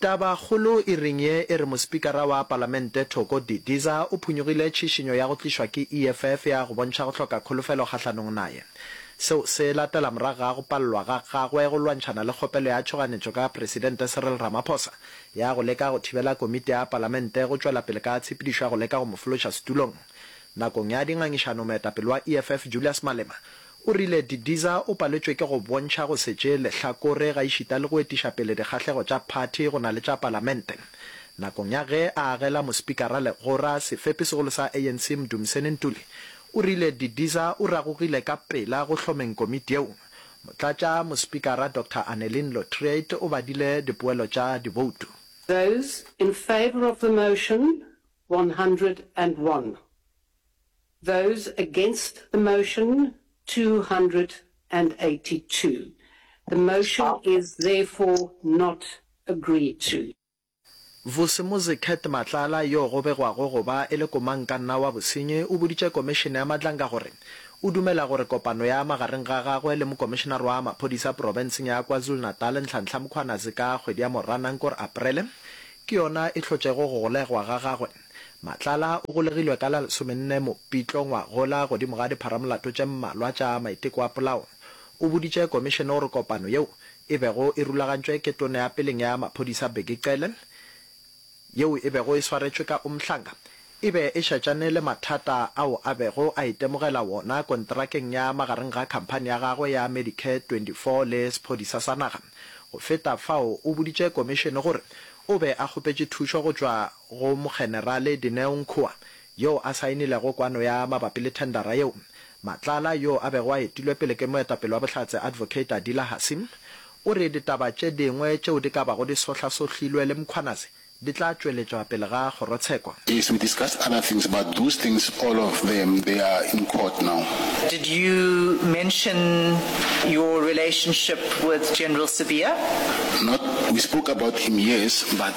Tabakgolo e reng ye e re Mospikara wa Palamente Thoko Didiza o phunyogile tšhišinyo ya go tlišwa ke EFF ya go bontšha go hloka kholofelo kgahlanong naye. Seo se latela morago ga go palelwa ga gagwe go lwantšhana le kgopelo ya tšhoganetšo ka Presidente Cyril Ramaphosa ya go leka go thibela Komiti ya Palamente go tšwela pele ka tshepedišo ya go leka go mo fološa setulong. Nakong ya dingangišano moetapele wa EFF Julius Malema O rile, Didiza o paletšwe ke go bontšha go se tšee lehlakore gaešita le go etiša pele dikgahlego tša phathi go na le tša palamente. Nakong ya ge a agela mospikara legora, sefepi segolo sa ANC Mdumiseni Ntuli o rile Didiza o ragogile ka pela go hlomeng komiti yeo. Motlatša mospikara Doctor Anneline Lotriet o badile dipoelo tša diboutu. Those in favour of the motion, one hundred and one. Those against the motion, 282. The motion is therefore not agreed to. Vusimuzi Kurt Matlala yo go begwago go ba e le komankanna wa bosenyi o boditše Komišene ya Madlanga gore o dumela gore kopano ya magareng ga gagwe le Mokomišenare wa Maphodisa Profenseng ya KwaZulu-Natal Nhlanhla Mkhwanazi ka kgwedi ya Moranang kor Aprele ke yona e hlotšego go golegwa ga gagwe Matlala o golegilwe ka la lesomenne Mopitlo ngwagola godimo ga dipharamolato tše mmalwa tša maiteko a polao. O boditše komišene gore kopano yeo e bego e rulagantšwe ke Tona ya peleng ya Maphodisa Bheki Cele, yeo e bego e swaretšwe ka Umhlanga, e be e šetšane le mathata ao a bego a itemogela wona kontrakeng ya magareng ga khamphani ya gagwe ya Medicare 24 le sephodisa sa naga. Go feta fao o boditše komišene gore o be a kgopetše thušo go tšwa go Mokgenerale Dineo Nkhoa, yoo a saenilego kwano ya mabapi le thendara yeo, Matlala, yoo a bego a etilwe pele ke moetapele wa Bohlatse Advocate Adila Hassim, o re ditaba tše dingwe tšeo di ka bago di sohlasohlilwe le Mkhwanazi di tla tšweletšwa pele ga kgorotsheko. Yes we discussed other things but those things all of them they are in court now. Did you mention your relationship with General Sibiya? Not, we spoke about him yes but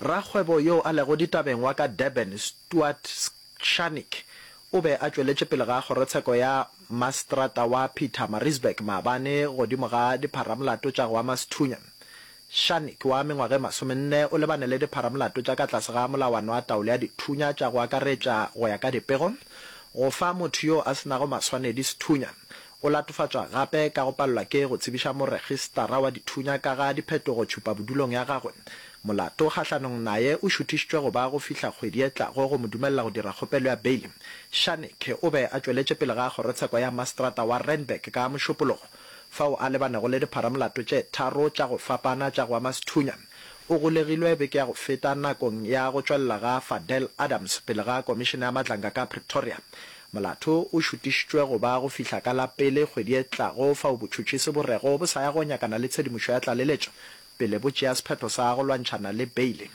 Rakgwebo yo a lego ditabeng wa ka Durban, Stuart Schanik, o be a tšweletše pele ga kgorotsheko ya Maseterata wa Pietermaritzburg maabane godimo ga dipharamolato tša go ama sethunya. Schanik wa mengwaga e masomenne o lebane le dipharamolato tša ka tlase ga Molawana wa Taolo ya Dithunya tša go akaretša go ya ka dipego, go fa motho yo a se nago maswanedi sethunya, Go latofatšwa gape ka go palelwa ke go tsebiša moregistarra wa dithunya ka ga diphetogo tšhupabodulong ya gagwe. Molato kgahlanong naye o šuthišitšwe go ba go fihla kgwedi e tlago go mo dumelela go dira kgopelo ya beili. Shannick o be a tšweletše pele ga kgorotsheko ya maseterata wa Randburg ka Mošupologo, fao a lebanego le dipharamolato tše tharo tša go fapana tša go ama sethunya. O golegilwe beke ya go feta nakong ya go tšwelela ga Fadel Adams pele ga Komišene ya Matlanga ka Pretoria. Molato o šutišitšwe go ba go fihla ka la pele kgwedi e tlago fao botšhotšhisi bo rego bo sa ya go nyakana le tshedimošo ya tlaleletšo pele bo tšea sephetho sa go lwantšhana le beile.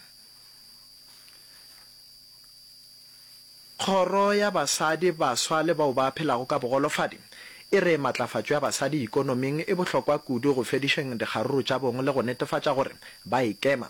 Kgoro ya Basadi, Baswa le bao ba Phelago ka Bogolofadi e re matlafatšo ya basadi ikonoming e bohlokwa kudu go fedišeng dikgaruru tša bong le go netefatša gore ba ikema.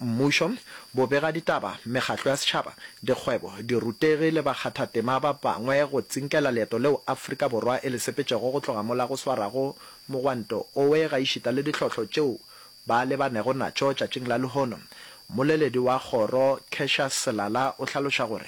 mmušo, bobegaditaba, mekgatlo ya setšhaba, dikgwebo, dirutegi le bakgathatema ba bangwe go tsinkela leeto leo Afrika Borwa e le sepetšego go tloga mola go swarago mogwanto owe gaešita le ditlhohlo tšeo ba lebanego natšo tšatšing la lehono. Mmoleledi wa kgoro, Cassius Selala o hlaloša gore.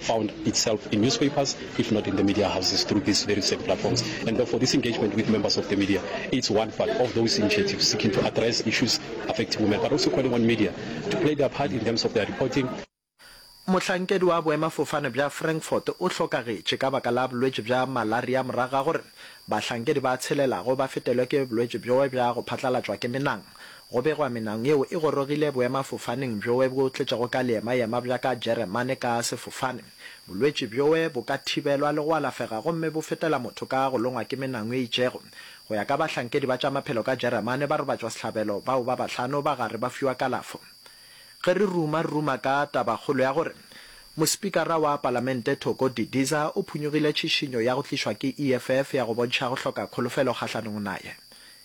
found itself in newspapers, if not in the media houses, through these very same platforms. And therefore, this engagement with members of the media is one part of those initiatives seeking to address issues affecting women, but also calling on media to play their part in terms of their reporting. Mohlankedi wa boemafofane bja Frankfurt o hlokagetše ka baka la bolwetši bja malaria morago ga gore bahlankedi ba tshelelago ba fetelwe ke bolwetši bjoe bja go phatlalatšwa ke menang. Go begwa menang yeo e gorogile boemafofaneng bjoe bo tletšego ka leemayema bja ka Jeremane ka sefofane. Bolwetši bjoe bo ka thibelwa le go alafega gomme bo fetela motho ka go longwa ke menang e itšego. Go ya ka bahlankedi ba tša maphelo ka Jeremane, barobatšwasehlabelo bao ba bahlano ba gare ba fiwa kalafo. Ge re ruma, re ruma ka tabakgolo ya gore Mospikara wa Palamente Thoko Didiza o phunyogile tšhišinyo ya go tlišwa ke EFF ya go bontšha go hloka kholofelo kgahlanong naye.